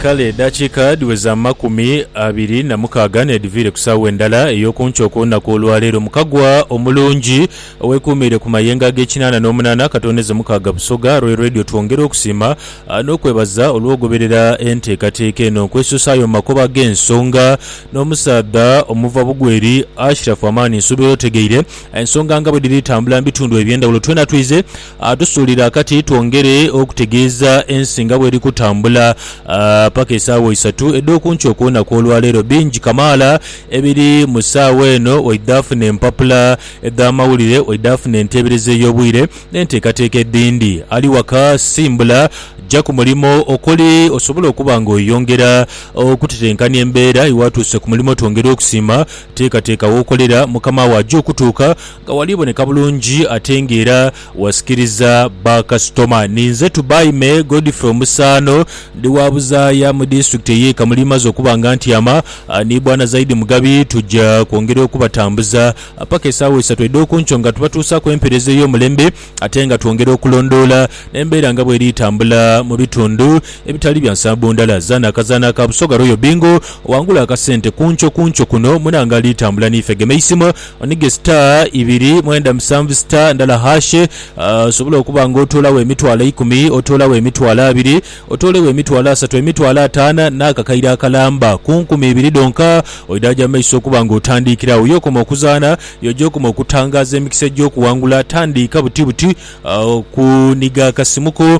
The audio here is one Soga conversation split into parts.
Kale edhakiika dhiweze amakumi abiri na mukaaga n'edhiviire ku saawa endala ey'okunkyo okw'olunaku olwa leero mu kagwa omulungi owekuumiire ku mayengo ag'ekinaana n'omunaana akatoonheze mukaaga Busoga Royal Radio twongera okusiima n'okwebaza olw'ogoberera enteekateeka eno nkwesuusaayo mu makubo ag'ensonga n'omusaadha omuva bugweri Ashiraf Amani nsuubira otegeire ensonga nga bwedhiri tambula mu bitundu eby'endhawulo twena twize Atusuulira kati twongere okutegeeza ensi nga bweri kutambula paka esaawa isatu edh'oku nkyo ku lunaku olwaleero. Bingi kamaala ebiri mu saawa eno waidha funa empapula edh'amawulire, waidha funa enteebereza ey'obwire n'enteekateeka edhindi. Ali waka simbula ja ku mulimo okuli osobole okuba nga oyongera okutetenkania embeera. Iwe atuuse ku mulimo twongere okusiima. Teekateeka w'okolera, mukama wo aja okutuuka Nga wali boneka bulungi ate nga era wasikiriza ba kasitoma. Ninze Tubaime Godfrey Omusaano, ndi wa buzaaya mu disitulikiti ey'e Kamuli. Maze okuba nga ntyama ni Bwana Zaidi Mugabi, tuja kwongera okubatambuza paka esaawa isatu edh'okunkyo nga tubatuusaaku empeereza ey'omulembe ate nga twongera okulondoola embeera nga bweri tambula mu bitundu ebitali bya nsambo ndala. Zaana akazaana ka Busoga Royal Bingo, wangula akasente kunkyo kunkyo kuno munange ali tambula n'ife. Gema eisimu Onige star ibiri mwenda musanvu star ndala hash osobole okuba nga otoolagho emitwalo eikumi, otoolagho emitwalo abiri, otoolegho emitwalo asatu, emitwalo ataana n'akakaire akalamba ku nkumi ibiri dhonka. Oidhaaja mu maiso okuba nga otandiikira agho. Y'okoma okuzaana, y'oja okoma okutangaaza emikisa egy'okuwangula. Tandiika buti buti kuniga akasimu ko.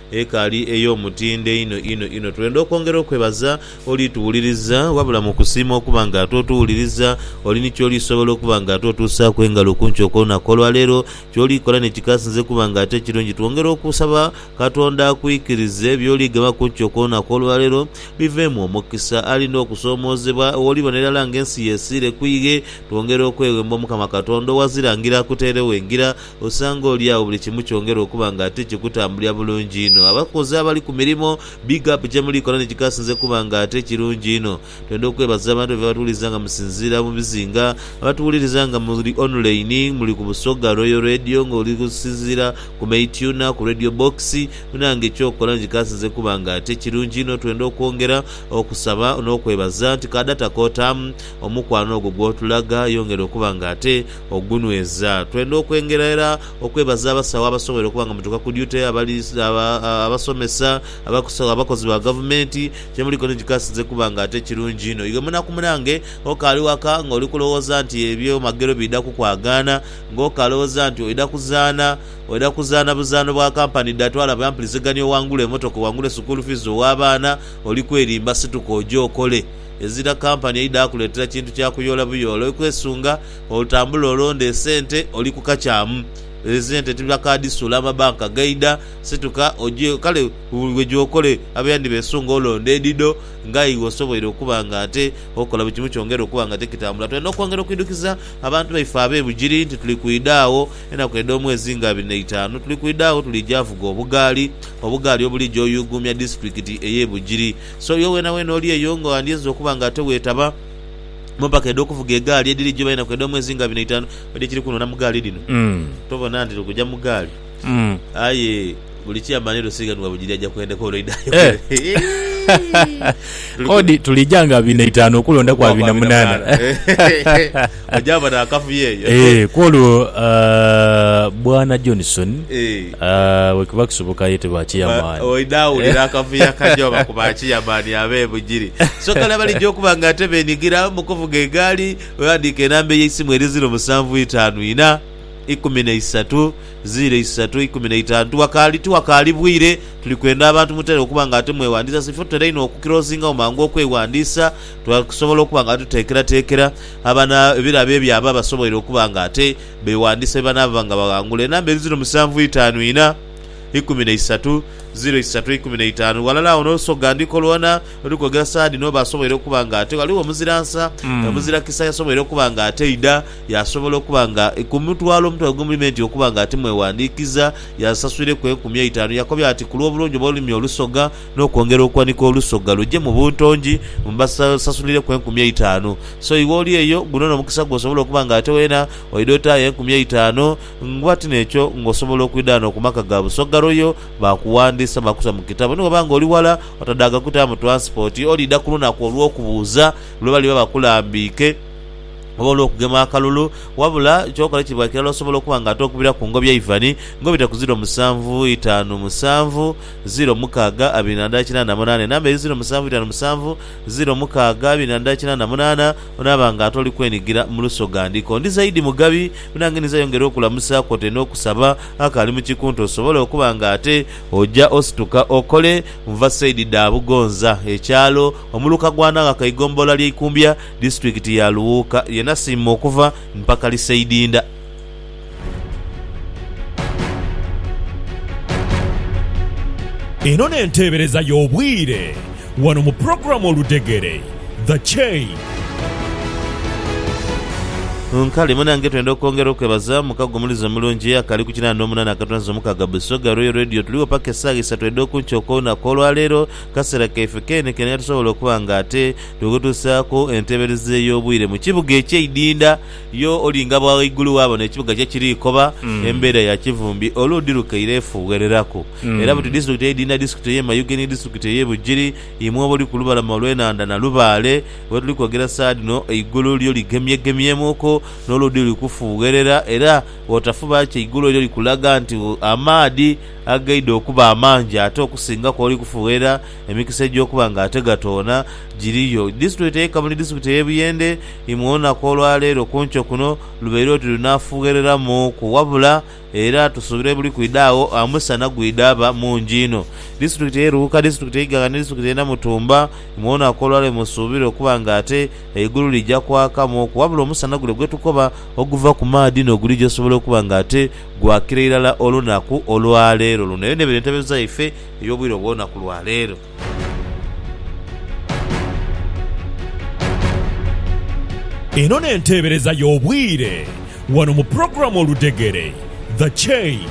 Ekaali ey'omutindo einho inho inho. Twenda okwongera okwebaza oli tuwuliriza, wabula mu kusiima okuba nga ate otuwuliriza, oli ni ky'oli sobola okuba nga ate otuusaaku engalo ku nkyo kw'olunaku olwa leero. Ky'oli kola ni kikasinze kuba nga ate kirungi. Twongera okusaba Katonda akwikirize by'oli gema ku nkyo kw'olunaku olwa leero biveemu omukisa. Alina okusoomoozebwa w'oliba n'irala nga ensi yesiire ku ighe. Twongera okweghemba Omukama Katonda owa zirangira akuteeregho engira. osanga oli agho buli kimu kyongera okuba nga ate kikutambulira bulungi inho. Abakozi abali ku mirimo, big up kyemuli kola nikikasinze kuba nga ate kirungi inho. Twenda okwebaza abantu baife abatuwuliriza nga musinziira mu bizinga, abatuwuliriza nga muli online, muli ku Busoga Royal Radio nga oli kusinziira ku Maytuna, ku Radio Box. Munange kyokola nikikasinze kuba nga ate kirungi inho. Twenda okwongera okusaba n'okwebaza nti ka data k'otaamu omukwano ogwo gw'otulaga yongera okuba nga ate ogunweza. Twenda okwengera era okwebaza abasawo abasobweire okuba nga mutuuka ku duty, abasomesa, abakozi ba gavumenti, kyemuliiko ni kikasinze kuba nga ate kirungi inho. Iwe munaku munange okaali waka nga oli kulowooza nti ebyo magero biidha kukwagaana, nga okalowoza nti oidha kuzaana, oidha kuzaana buzaano bwa kampani dha twala bwa mpulizigania owangule emotoka, owangule sukuulu fiizi owa baana, oli kwerimba. Situka oje okole, ezira kampani eidha kuleetera kintu kya kuyoola buyoola. Oli kwesunga. Olutambula olonda esente oli ku kakyamu. Esente tibiba kaadi suula amabanka gaidha. Situka oje kale buli gyokole abe yandhibesunga olonda edhidho nga iwe osoboire okuba nga ate okola buli kimu kyongere okuba nga ate kitambula. Twendha okwongera okwidhukiza abantu baife abe Bugiri nti tuli kwidha agho enaku edh'omwezi nga abiri n'eitaanu tuli kwidha agho tuli ja vuga obugaali, obugaali obulija oyuuguumya disitulikiti eye Bugiri. So iwe weenaweena oli eyo nga wandyenze okuba nga ate weetaba. mu mpaka edh'okuvuga egaali edhiri jjo bainaku edh'omwezi nga bino itaanu odi ekiri kunona mu gaali dhino Mm. tobona nti okuja mu gaali Mm. aye buli kyamba ni lusighanibwa bugiri aja kwendeka olwo aidha Eh. ayokere Kodi tulija nga abiri na itaanu okulondaku Okuba abiri na abiri na munaana. munaana. Ogyaba n'akavuyo eyo. Eh, kwolwo ah, Bwana Johnson Eh. Bwe kiba kisoboka aye tebaakiya maani. Oidha wulira akavuyo akaja oba ku baakiya maani ab'ebugiri. So kale abalija okuba nga ate beenigira mu kuvuga egaali, weghandiike enamba ey'eisimu eri ziro musanvu itaanu ina, ikumi na isatu, ziro isatu, ikumi na itaanu. Tiwakaali tiwakaali bwire, tuli kwenda abantu mutere okuba nga ate mweghandiisa. Sifo tutera inho okukirosingawo mangu okweghandiisa, twakusobola okuba nga tuteekerateekera abana ebirabo ebyo abo abasoboire okuba nga ate Beewandiisa bye banaaba nga baghangula enamba edho ziro musanvu itaanu inha, ikumi na isatu, ziro isatu, ikumi na itaanu. Ghalala agho n'olusi olughandiiko lwona luli kwogera saha dhino oba asoboire okuba nga ate ghaligho omuzira nsa, omuzira kisa yasoboire okuba nga ataidha, yaasobola okuba nga ku mutwalo omutwalo ogw'omu limenti okuba nga timwewandiikiza, yaasasuireku enkumi eitaanu. Yakobya ati, Ku lw'obulungi obw'olulimi olusoga, n'okwongera okuwanika olusoga luje mu buntongi mbasasulireku enkumi eitaanu. So iwe oli eyo, guno n'omukisa gw'osobola okuba nga ate weena oidha otaayo enkumi eitaanu. Ng'oba ti n'ekyo, ng'osobola okwidha ghano ku maka ga Busoga Royal baakuwandiisa baakuta mu kitabo. Ni bw'oba ng'oli ghala otadaaga kutaamu twansipoti, oliidha ku lunaku olw'okubuuza lwe baliba bakulambiike oba olw'okugema akalulu. Wabula ky'okola kiba kirala osobola okuba nga ate okubira ku ngobya Ivan ng'obita ku ziro musanvu itaanu musanvu. ziro mukaaga abiri na ndala kinaana munaana enamba eri ziro musanvu itanu musanvu ziro mukaaga abiri na ndala kinaana munaana Onaaba nga ate oli kwenigira mu lusoga ndiko ndi zaidi mugabi nange ninza yongera okulamusa kwote n'okusaba akaali mu kikunta osobole okuba nga ate oja osituka okole Nva saidi dha Bugonza ekyalo omuluka gwa Naghaka eigombolola ly'e Ikumbya disitulikiti ya Luwuuka ye nasiima okuva mpakali saidi nda. Eno n'enteebereza y'obwire wano mu pulogulaamu Oludhegere, The Chain. Kale munange twenda okwongera okwebaza muka gwo omulizi omulungi akali ku kinana nomunana akatonza omukaga Busoga Royal Radio tuligho paka esaawa isatu edho kunkyo okwolunaku olwaleero kasera kaife keene keene nga tusobola okuba nga ate tukutuusaaku enteebereza ey'obwire mu kibuga ekyeidinda Yo olinga bwa ghaigulu waabona ekibuga kye kiri koba embeera ya kivumbi olwo dhi lukaire efuughereraku. Era buti disitulikiti eidhindha disitulikiti ey'e Mayuge ni disitulikiti ey'e Bugiri, imwe abali ku lubalama olw'enhandha Nalubaale we tuli kwogera saha dhino, eigulu lyo ligemyegemyemuuku n'oludhi luli kufuugherera era bw'otafuba kye eigulu eryo likulaga nti amaadhi agaidha okuba amangi ate okusinga kw'oli kufuugherera. Emikisa egy'okuba nga ate gatoona giriyo. Disitulikiti ey'e Kamuli Disitulikiti ey'e Buyende imwe olunaku olwa leero ku nkyo kuno lubaire oti lunaafughereramu ku wabula era tusuubira ebuli kwidha agho omusana gwidhaba mungi inho. Disitulikiti ey'e Luuka, Disitulikiti ey'e Iganga ni Disitulikiti ey'e Namutumba imwe olunaku olwa leero musuubire okuba nga ate eigulu lija kwakamu ku wabula omusana gule gwe tukoba oguva ku maadhi n'ogulija osobola okuba nga ate gwakira irala olunaku olwa leero luno. Eyo n'ebere entebe zaife. ey'obwire obw'olunaku lwa leero. Eno n'enteebereza y'obwire wano mu pulogulaamu Oludhegere, The Chain.